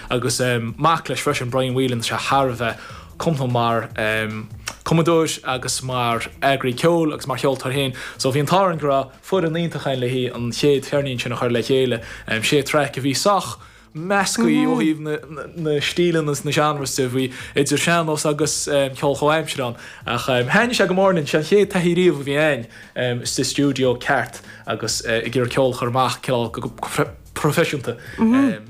Agus mac leis freisin, Brian Whelan, tá sé thar a bheith cumasach mar chumadóir agus mar eagraí ceoil agus mar cheoltóir féin. So bhí an t-ádh orainn go raibh foireann iontach againn leis an chéad cheirnín sin a chur le chéile. Sé thraic a bhí sách measctha ó thaobh na stíleanna is na seánraí de. Bhí idir sean-nós agus ceol comhaimseartha ann. Ach thaitnigh sé go mór linn. Sé an chéad taithí riamh a bhí againn sa stiúideo ceart agus ag iarraidh ceol a chur amach, cineál go. proifisiúnta.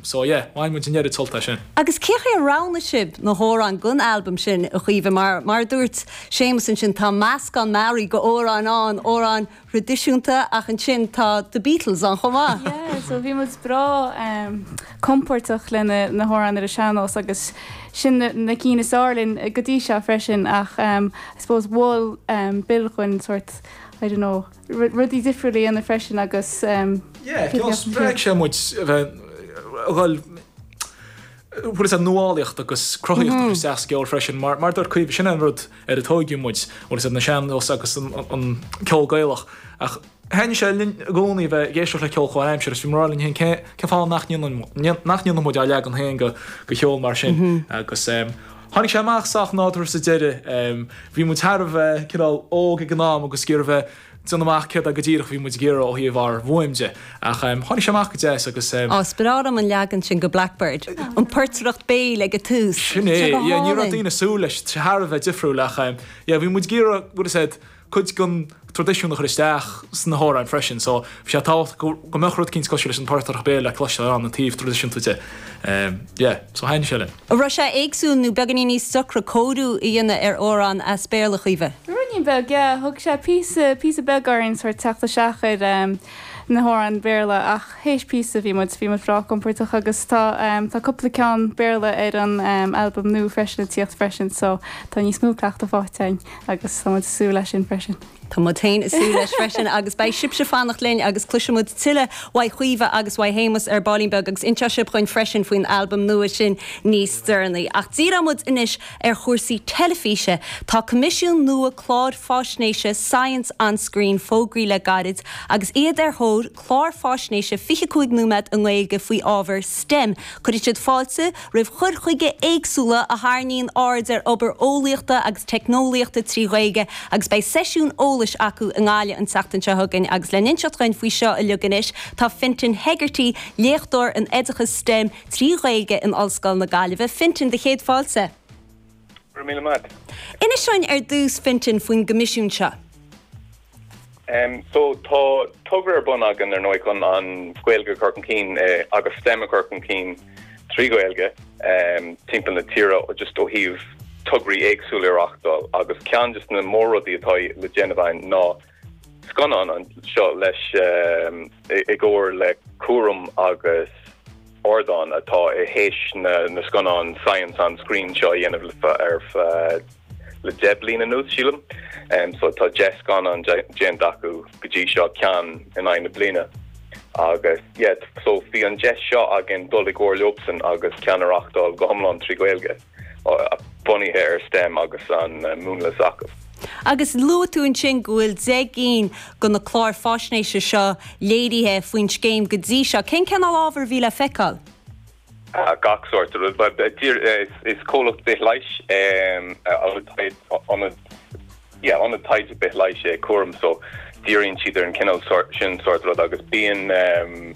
So yeah, bhain muid an-deo sult as sin. Agus cé chaoi ar roghnaigh sibh na hamhráin don albam sin, a Chaoimhe? Mar, mar a dúirt Séamus ansin, tá meascán mearaí d'amhráin ann, amhráin thraidisiúnta ach ansin tá The Beatles ann chomh maith. Yeah, so bhí muid breá compordach le na hamhráin ar an sean-nós agus sin na cinn is fearr linn go dtí seo freisin ach I suppose mhol Bill dúinn sórt, I don't know, rudaí difriúil a dhéanamh freisin agus Yeah, cineál spreag sé muid a bheith ag dul, tá a fhios agat, nuálaíocht agus cruthaíocht agus isteach sa gceol freisin mar mar dúirt Caoimhe sin an rud ar a tóigeadh muid, tá a fhios agat, an sean nós agus an an ceol Gaelach ach thaitnigh sé linn i gcónaí a bheith ag éisteacht le ceol comhaimseartha is bhí muid ag rá linn féin cén cén fáth nach ndéanann nach ndéanann muid ár leagan féin go go cheol mar sin agus Tháinig sé amach sách nádúrtha sa deireadh. Bhí muid thar a bheith, cineál, óg ag an am agus ag iarraidh a bheith ag déanamh amach céard é go díreach a bhí muid ag iarraidh ó thaobh ár bhfuaim de. Ach tháinig sé amach go deas agus. Á, is breá liom an leagan sin go Blackbird, an portaireacht béil ag an tús. Sin é, yeah, ní raibh daoine ag súil leis, thar a bheith difriúil ach yeah, bhí muid ag iarraidh, is dócha, cuid den traidisiún a chur isteach sna hamhráin freisin. So bhí sé tábhachtach go mbeadh rud eicínt cosúil leis an portaireacht béil le cloisteáil ann, an taobh traidisiúnta de. Yeah, so thaitnigh sé linn. An raibh sé éagsúil nó beagainín níos deacra cóiriú a dhéanamh ar amhrán as Béarla, Caoimhe? Ruainín beag, yeah. Thug sé píosa, píosa beag orainn sórt teacht isteach ar na hamhráin Bhéarla ach th'éis píosa bhí muid, bhí muid breá compordach agus tá, tá cúpla ceann Béarla ar an albam nua freisin ag tíocht freisin so tá níos mó cleachtadh faighte againn. Agus tá muid ag súil leis sin freisin. Tá muid féin ag súil leis freisin agus beidh sibhse ag fanacht linn agus cloisfidh muid tuilleadh uaidh Chaoimhe agus uaidh Shéamus ar baillín beag agus inseoidh sibh dhúinn freisin faoin albam nua sin níos deireanaí. Ach díreoidh muid anois ar chúrsaí teilifíse. Tá coimisiún nua cláir fáisnéise Science on Screen fógraithe le gairid agus iad ar thóir clár fáisnéise 25 nóiméad i nGaeilge faoi ábhar stem. Cuirfidh siad fáilte roimh chur chuige éagsúla a tharraingíonn aird ar obair eolaíochta agus teicneolaíochta trí Ghaeilge agus beidh seisiún eolais acu i nGaillimh an tseachtain seo chugainn agus le n-inseacht dhúinn faoi seo uilig anois tá Fintan Hegarty, Léachtóir in Oideachas stem trí Ghaeilge in Ollscoil na Gaillimhe. Fintan, do chéad fáilte. Go raibh míle maith agat. Inis dhúinn ar dtús, Fintan, faoin gcoimisiún seo. So, tá togra ar bun againn ar ndóigh chun an Ghaeilge a chur chun cinn agus stem a chur chun cinn trí Ghaeilge timpeall na tíre just ó thaobh tograí éagsúla a reáchtáil agus ceann de na mór-rudaí atá le déanamh againn ná scannán a dhéanamh i gcomhar le cúram agus ardán atá tar éis na na scannáin Science on Screen seo a dhéanamh le deich bliana anuas sílim. So tá deich scannán déanta acu go dtí seo ceann in aghaidh na bliana agus yeah so bhí an deis seo againn dul i gcomhar leofsan agus ceann a reachtáil go hiomlán trí Ghaeilge. bunaithe ar stem agus an múnla s'acu. Agus luaigh tú ansin go bhfuil deich gcinn de na cláir fáisnéise seo léirithe faoin scéim go dtí seo. Cén cineál ábhair a bhí le feiceáil? Gach sórt rud. Is comhlacht bithleighis é nó ionad yeah ionad taighde bithleighis é cúram so díríonn siad ar an cineál sort sin sórt rud agus bíonn ehm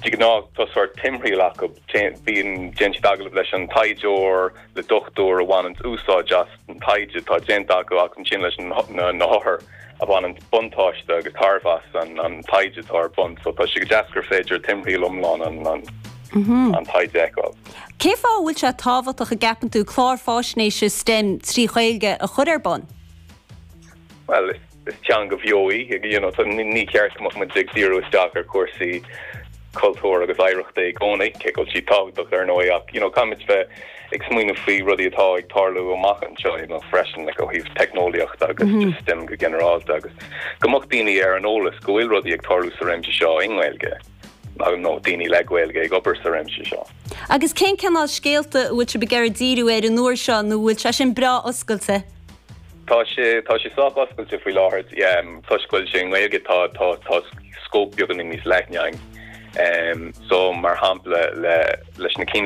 de ghnáth tá sort timthriall acu bíonn déann siad agallamh leis an taighdeoir le dochtúir a bhaineanns úsáid as an taighde atá déanta acu agus ansin leis na na hothair a bhaineanns buntáiste agus tairbhe as an an taighde atá ar bun so tá sé go deas gur féidir timthriall iomlán an an taighde a fheiceáil. Cé fáth a bhfuil sé tábhachtach a gceapann tú clár fáisnéise stem trí Ghaeilge a chur ar bun? Bhuel, is teanga bheo í, you know, so ní ceart go mbeadh muid ag díriú isteach ar chúrsaí cultúir agus oidhreachta i gcónaí, cé go bhfuil siad tábhachtach ar ndóigh ach, you know, caithfimid bheith ag smaoineamh faoi rudaí atá ag tarlú amach anseo, you know, freisin ó thaobh teicneolaíochta agus mm -hmm. stem go ginearálta agus go mbeadh daoine ar an eolas go bhfuil rudaí ag tarlú sa réimse seo i nGaeilge. nó daoine le Gaeilge ag obair sa réimse seo. Agus cén cineál scéalta a bhfuil tú ag iarraidh díriú air an uair seo nó bhfuil sé sin breá oscailte? Tá sé, tá sé sách oscailte faoi láthair. Toisc go bhfuil sé i nGaeilge tá, tá, tá scóip beagáinín níos leithne ann. So, mar shampla, le, leis na cinn a.